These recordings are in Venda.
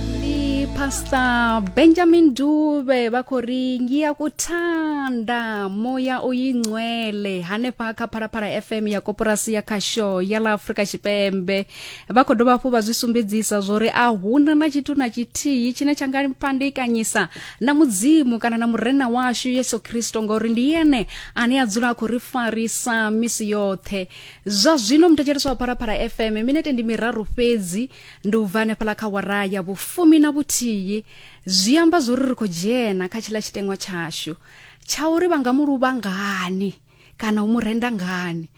ndi pastor benjamin dube vha khou ri ngiya kuthanda moya uyingcwele hanefha kha phalaphala fm ya koporasi ya khasho ya ḽa afrika tshipembe vha khou dovha hafhu vha zwi sumbedzisa zwo ri a huna na tshithu na tshithihi tshine tsha nga fhandekanyisa na mudzimu kana na murena washu yesu khristo ngauri ndi yene ane a dzula a khou ri farisa misi yoṱhe zwa zwino muthetshelesi wa phalaphala fm minete ndi miraru fhedzi ndi u bva hanefhaḽa kha wara ya vhufumi na vhuthihi zwi amba zwori ri khou dzhena kha tshiḽa tshiteṅwa tshashu tsha uri vha nga mu luvha ngani kana u mu renda ngani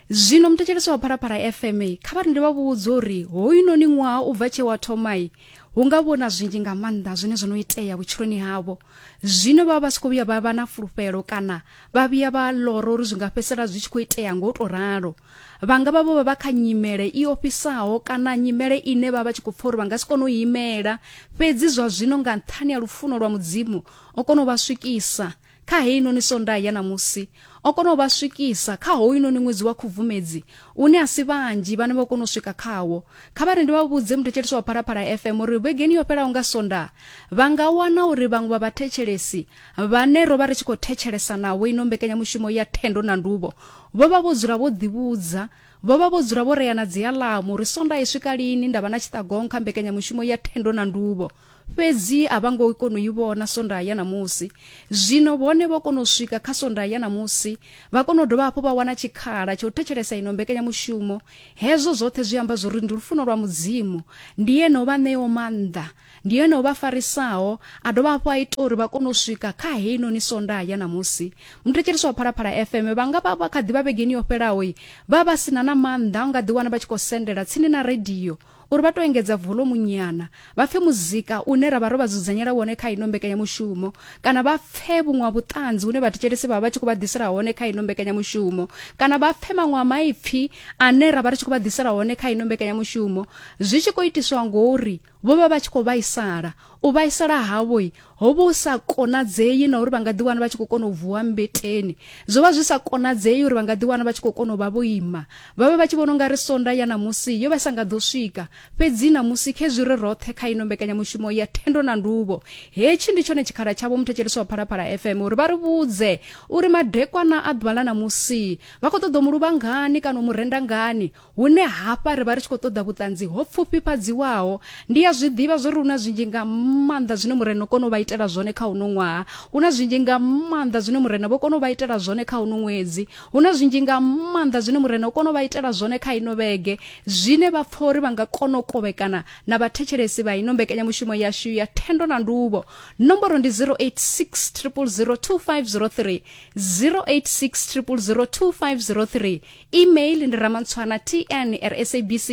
zwino muthetshelesi wa phalaphala fm kha vha rinde vha vhudze uri hoyunoni ṅwaha u bva tshe wa thomai hu nga vhona zwinzhi nga maanḓa zwine zwo no itea vhutshiloni havho zwino vha vha si khou vhuya vha vha na fulufhelo kana vha vhuya vha lora uri zwi nga fhedzisela zwi tshi khou itea ngo to ralo vha nga vha vho vha vha kha nyimele i ofhisaho kana nyimele ine vha vha tshi khou pfa uri vha nga si kone u imela fhedzi zwa zwino nga nṱhani ha lufuno lwa mudzimu o kona u vha swikisa kha heinoni sondaha ya ṋamusi o kona u vha swikisa kha hoyunoni ṅwedzi wa khubvumedzi une a si vhanzhi vhane vho kona u swika khawo kha vha ri ndi vha vhudze muthetshelesi wa phalaphala fm uri vhegeni yo fhelaho nga sonda vha nga wana uri vhaṅwe vha vhathetshelesi vhane ro vha ri tshi khou thetshelesa navho ino mbekanyamushumo ya thendo na nduvho vho vha vho dzula vho ḓivhudza vho vha vho dzula vho reana dzialamu uri sonda i swika lini nda vha na tshiṱagong kha mbekanyamushumo ya thendo na nduvho Fhedzi a vha ngo kona u i vhona sonda ya ṋamusi. Zwino vhone vho kona u swika kha sonda ya ṋamusi, vha kona u dovha hafhu vha wana tshikhala tsha u thetshelesa ino mbekanyamushumo. Hezwo zwoṱhe zwi amba zwauri ndi lufuno lwa Mudzimu. Ndi Ene o vha ṋeaho maanḓa. Ndi Ene o vha farisaho, a dovha hafhu a ita uri vha kone u swika kha heinoni sonda ya ṋamusi. Muthetshelesi wa Phalaphala FM vha nga vha vha kha ḓi vha vhegeni yo fhelaho vha vha si na na maanḓa a u nga ḓiwana vha tshi khou sendela tsini na radio, uri vha tou engedza volomu nyana, vha pfe muzika une ra vha ro vha dzudzanyela wone kha ino mbekanyamushumo kana vha pfe vhuṅwe ha vhuṱanzi hune vhathetshelesi vha vha vha tshi khou vha ḓisela hone kha ino mbekanyamushumo kana vha pfe maṅwe a maipfi ane ra vha ri tshi khou vha ḓisela hone kha ino mbekanyamushumo zwi tshi khou itiswa ngori vho vha vha tshi khou vhaisala u vhaisala havhoi ho vha hu sa konadzei na uri vha nga ḓiwana vha tshi khou kona u vuwa mbeteni zwo vha zwi sa konadzei uri vha nga ḓiwana vha tshi khou kona u vha vho ima vha vha vha tshi vhona u nga ri sonda ya ṋamusi yo vha sa nga ḓo swika fhedzi ṋamusi khezwi ri roṱhe kha ino mbekanyamushumo ya thendo na nduvho hetshi ndi tshone tshikhala tshavho muthetshelesi wa phalaphala fm uri vha ri vhudze uri madekwana a ḓuvha ḽa ṋamusi vha khou ṱoḓa u mu luvha ngani kana u mu renda ngani Hune hafha ri vha ri tshi khou ṱoḓa vhuṱanzi ho pfufhifhadziwaho. Ndi a zwi ḓivha zwo ri hu na zwinzhi nga maanḓa zwine Murena o kona u vha itela zwone kha uno ṅwaha. Hu na zwinzhi nga maanḓa zwine Murena vho kona u vha itela zwone kha uno ṅwedzi. Hu na zwinzhi nga maanḓa zwine Murena o kona u vha itela zwone kha ino vhege, zwine vha pfa uri vha nga kona u kovhekana na vhathetshelesi vha ino mbekanyamushumo yashu ya Thendo na Nduvho. Nomboro ndi 086 000 2503, 086 000 2503. email ndi ramantswana tn r sabc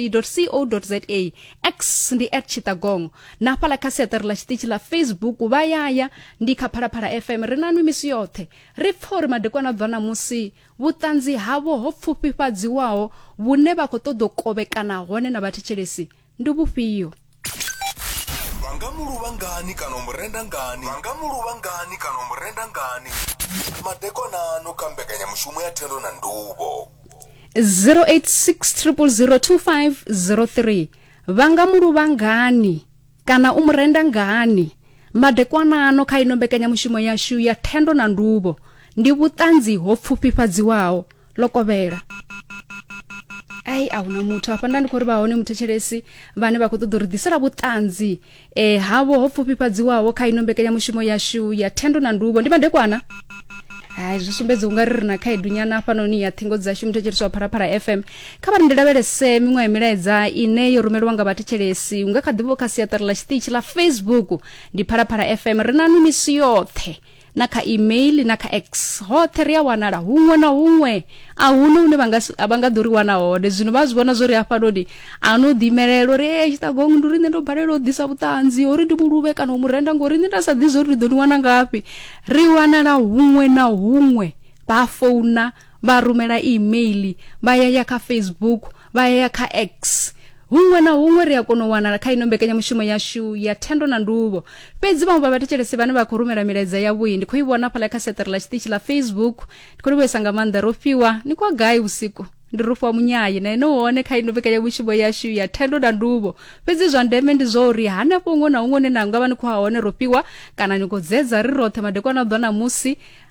co za x ndi at chitagong na hafhala kha siaṱari ḽa tshiṱitshi ḽa facebook vha yaya ndi kha phalaphala fm ri nanwi misi yoṱhe ri pfa uri madekwana a bva ṋamusi vhuṱanzi havho ho pfufhifhadziwaho vhune vha khou ṱoḓa u kovhekana hone na vhathetshelesi ndi vhufhio vha nga mu luvha ngani kana u mu renda ngani vha nga mu luvha ngani kana u mu renda ngani madekonano kha mbekanyamushumo ya thendo na nduvho 0860002503 vha nga mu luvha ngani kana u mu renda ngani madekwanano kha ino mbekanyamushumo yashu ya thendo na nduvho ndi vhuṱanzi ho pfufhifhadziwaho ḽo kovhela ai a huna muthu afha nda ndi khou ri vha hone muthetshelesi vhane vha khou ṱoḓa uri ḓisela vhuṱanzi eh havho ho pfufhifhadziwaho kha ino mbekanyamushumo yashu ya thendo na ndubo ndi madekwana hai zwi sumbedza unga ri ri na khaedu nyana hafhanoni ya ṱhingo dzashu muthetshelesi wa pharapara fm kha vha ri ndi lavhelese miṅwe ya milaedza ine yo rumelwa nga vhathetshelesi unga kha ḓivho kha siaṱari ḽa tshiṱitshi ḽa facebook ndi pharapara fm ri na nwi misi yoṱhe na kha email na kha x hoṱhe ri a wanala huṅwe na huṅwe a hune hune vha nga ḓo ri wana hone zwino vha zwi vhona zwo ri hafhanoni a no ḓimelela uri e tshiṱagong ndi uri nṋe ndo balela u ḓisa vhuṱanzi uri ndi muluvhe kana u murenda ngori nṋe nda sa ḓi zwo ri ḓo ni wana ngafhi ri wanala huṅwe na huṅwe vha founa vha rumela email vha yaya kha facebook vha ya kha x huṅwe na huṅwe ri a kona u wanala kha ino mbekanyamushumo yashu ya thendo na nduvho fhedzi vhaṅwe vha vhathetshelesi vhane vha khou rumela milaedza yavhui ndi khou i vhona fhala kha seṱere ḽa tshiṱitshi ḽa facebook ndi khou livhuesa nga maanḓa ro fhiwa ni kwa gai vhusiku ndi rufha munyayi na ene hone kha ino mbekanyamushumo yashu ya thendo na nduvho fhedzi zwa ndeme ndi zwa uri hanefho huṅwe na huṅwe une na nga vha ni khou ha hone ro fhiwa kana ni khou dzedza ri roṱhe madekwana a ḓwa na musi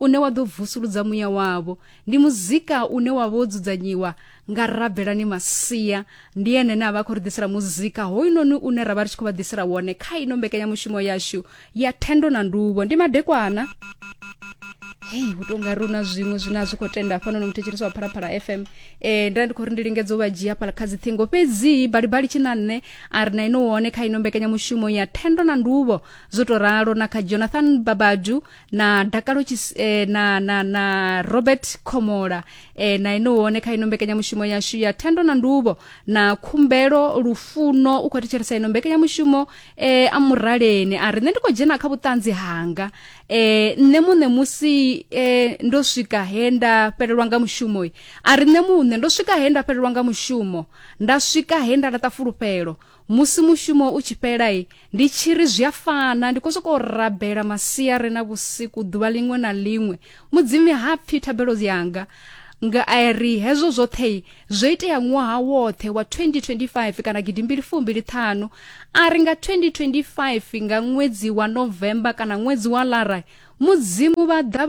une wa ḓo vusuludza muya wavho ndi muzika une wa vha wo dzudzanyiwa nga rabelani masia ndi ene ne a vha khou ri ḓisela muzika hoyunoni une ra vha ri tshi khou vha ḓisela wone kha ino mbekanyamushumo yashu ya thendo na nduvho ndi madekwana hei hu tonga ri una zwiṅwe zwine a zwi khou tenda hafhanoni muthetshelisi wa phalaphala fm um nda ndi khou ri ndi lingedza u vha dzhia phala kha dziṱhingo fhedzi balibali tshi na nṋe a ri na ino wone kha ino mbekanyamushumo ya thendo na nduvho zwo tou ralo na kha jonathan babadu na dakalo Tshis- eh, na, na, na robert khomola eh, na ene wone kha ino mbekanyamushumo yashu ya thendo na ndubo na khumbelo lufuno u khou thetshelesa ino mbekanyamushumo eh, a muraleni a ri nṋe ndi khou dzhena kha vhuṱanzi hanga eh, nṋe muṋe musi eh, ndo swika he nda fhelelwa nga mushumo a ri nṋe muṋe ndo swika he nda fhelelwa nga mushumo nda swika he nda laṱa fulufhelo musi mushumo u tshi fhela ndi tshi ri zwi a fana ndi khou sokou rabela masiari na vhusiku ḓuvha ḽiṅwe na ḽiṅwe mudzimi ha pfhi thabelo yanga nga a ri hezwo zwoṱhe zwo itea ṅwaha woṱhe wa 2025 kana gidimbili fumbili ṱhanu a ri nga 2025 nga ṅwedzi wa novemba kana ṅwedzi wa lara mudzimu vha ḓa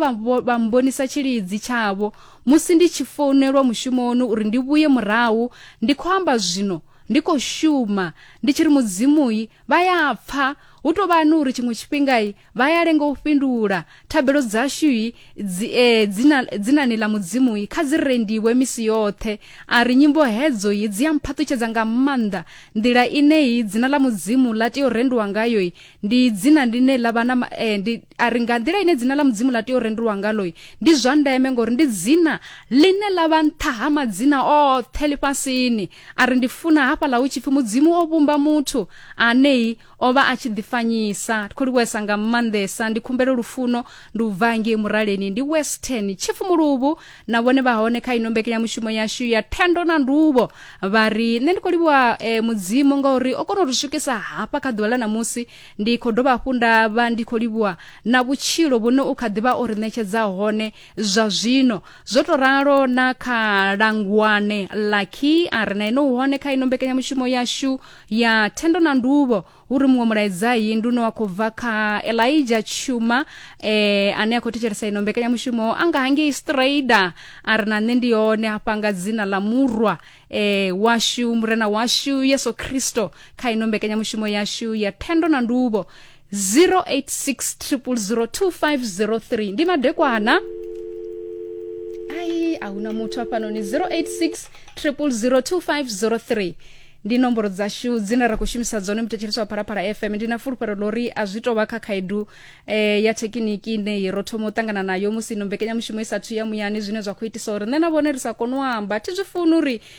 vha mbonisa tshilidzi tshavho musi ndi tshi founelwa mushumoni uri ndi vhuye murahu ndi khou amba zwino ndi khou shuma ndi tshi ri mudzimu-i vha ya pfa hu tou vha ni uri tshiṅwe tshifhinga-i vha ya lenga u fhindula thabelo dzashu-i dzi, e, dzina, dzinani ḽa mudzimu-i kha dzi rendiwe misi yoṱhe a ri nyimbo hedzo-i dzi a mphaṱutshedza nga maanḓa nḓila ine-i dzina ḽa mudzimu ḽa tea u rendiwa ngayo-i ndi dzina ḽine ḽa vha na e, ndi, a ri nga nḓila ine dzina ḽa mudzimu ḽa tea u rendiwa ngalo-i ndi zwa ndeme ngori ndi dzina ḽine ḽa vha nṱha ha madzina oṱhe lifhasini a ri ndi funa hafhaḽa hu tshi pfi mudzimu o vhumba muthu anei o vha a tshi ḓifanyisa ndi khou livhuwesa nga maanḓesa ndi khumbelo lufuno ndi u bva ngei muraleni ndi western chifu muluvhu na vhone vha hone kha ino mbekenyamushumo yashu ya thendo na nduvho vha ri nṋe ndi khou livhuwa eh, mudzimu ngauri o kona u ri swikisa hafha kha ḓuvha ḽa ṋamusi ndi khou dovha hafhu nda vha ndi khou livhuwa na vhutshilo vhune u kha ḓivha o ri ṋetshedza hone zwa zwino zwo to ralo na kha langwane lucky a re na ino hone kha ino mbekanyamushumo yashu ya thendo na nduvho hu ri muṅwe mulaedzai ndi une wa khou bva kha elija tshuma eh, ane a khou thetshelesa ino mbekanyamushumo a nga hangei strader a re na nṋe ndi hone hafha nga dzina ḽa murwa eh, washu murena washu yesu kristo kha ino mbekanyamushumo yashu ya thendo na nduvho 0860002503 ndi madekwana ayi ahuna muthu afanoni 0860002503 ndi nomboro dzashu dzine ra khou shumisa dzone mutetshelesi wa phalaphala fm ndi na fulufhelo lori a zwi tovha kha khaedu eh, ya thekiniki ine ro thoma u ṱangana nayo musi ino mbekanyamushumo i sathu ya muyani zwine zwa khou itisa uri nṋe na vhone ri sa kone u amba thi zwi funi uri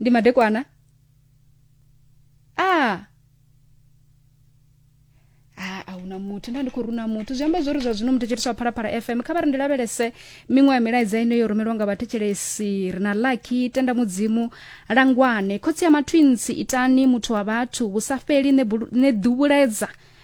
ndi madekwana a a ahuna muthu nda ndi khou runa muthu zwi amba zwori zwa zwino muthu tshitiswa phalaphala fm kha vha ri ndi lavhelese miṅwe ya milaedza ine yo rumelwa nga vhathetshelesi ri na laki tenda mudzimu langwane khotsi ya matwinsi itani muthu wa vhathu vhu sa fheli ne bulu- ne ḓuvhuledza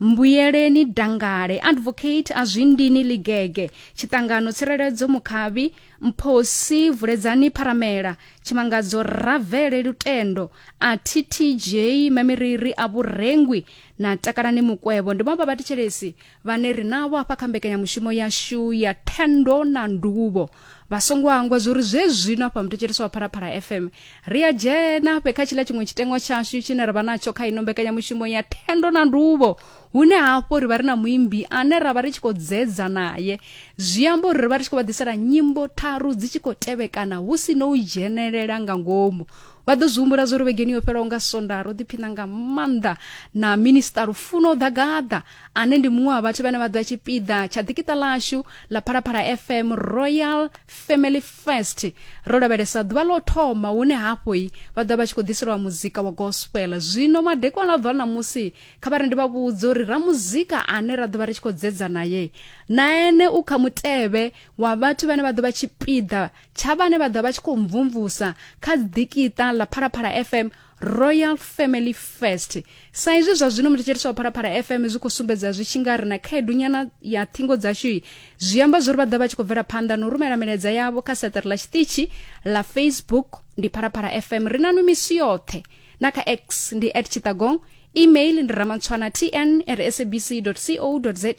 mbuyeleni dangale advocate a zwindini ligege tshiṱangano tsireledzo mukhavhi mphosi vuledzani pharamela tshimangadzo ravele lutendo a ttj mamiriri a vhurengwi na takalani mukwevho ndi vhaṅwe vha vhathetshelesi vhane ri navho hafha kha mbekanyamushumo yashu ya thendo na nduvho vha songo hangwa zwo ri zwe zwino afha muthetshelesi wa phalaphala fm ri a dzhena fhe kha tshila tshiṅwe tshitengwa tshashu tshine ra vha natsho kha ino mbekanyamushumo ya thendo na nduvho hune hafho ri vha ri na muimbi ane ra vha ri tshi khou dzedza naye zwi amba uri ri vha ri tshi khou vha ḓisela nyimbo tharu dzi tshi khou tevhekana hu si no u dzhenelela nga ngomu vha ḓo zwi humbula zwo ri vhegeni yo fhelaho nga sonda ro ḓiphina nga maanḓa na minista lufuno ḓagaḓa Ane ndi muṅwe wa vhathu vhane vha ḓa tshipiḓa tsha ḓikiṱa ḽashu ḽa Phalaphala FM Royal Family Fest. Ro lavhelesa ḓuvha ḽo thoma hune hafho i vha ḓa vha tshi khou ḓiselwa muzika wa gospel. Zwino madekwana a ḓuvha ḽa ṋamusi kha vha ri ndi vha vhudze uri ra muzika ane ra ḓo vha ri tshi khou dzedza naye na ene u kha mutevhe wa vhathu vhane vha ḓo vha tshipiḓa tsha vhane vha ḓa vha tshi khou mvumvusa kha ḓikiṱa ḽa Phalaphala FM royal family first sa izwi zwa zwino muthetshelesi wa phalaphala fm zwi khou sumbedza zwi tshi nga ri na khaedu nyana ya thingo dzashu zwi amba zwo ri vha ḓa vha tshi khou bvela phanḓa na u rumela milaedza yavho kha seṱere ḽa tshiṱitshi ḽa facebook ndi phalaphala fm ri na numisi yoṱhe na kha x ndi at tshitagong email ndi ramantshwana tn at sabc co za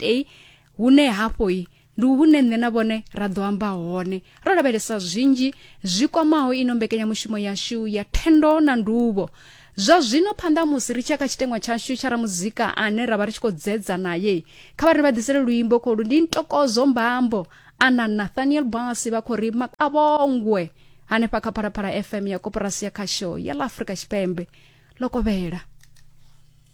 hune hafhoi ndi hune nṋe na vhone ra ḓo amba hone ro lavhelesa zwinzhi zwi kwamaho ino mbekanyamushumo yashu ya thendo na nduvho zwa zwino phanḓa musi ri tshia kha tshiteṅwa tshashu tsha ramuzika ane ra vha ri tshi khou dzedza naye kha vha ri vha ḓisele luimbo kholu ndi ntokozo mbambo ana nathaniel basi vha khou ri makavhongwe hanefha kha phalaphala fm ya koporasi ya khasho ya ḽa afrika tshipembe ḽo kovhela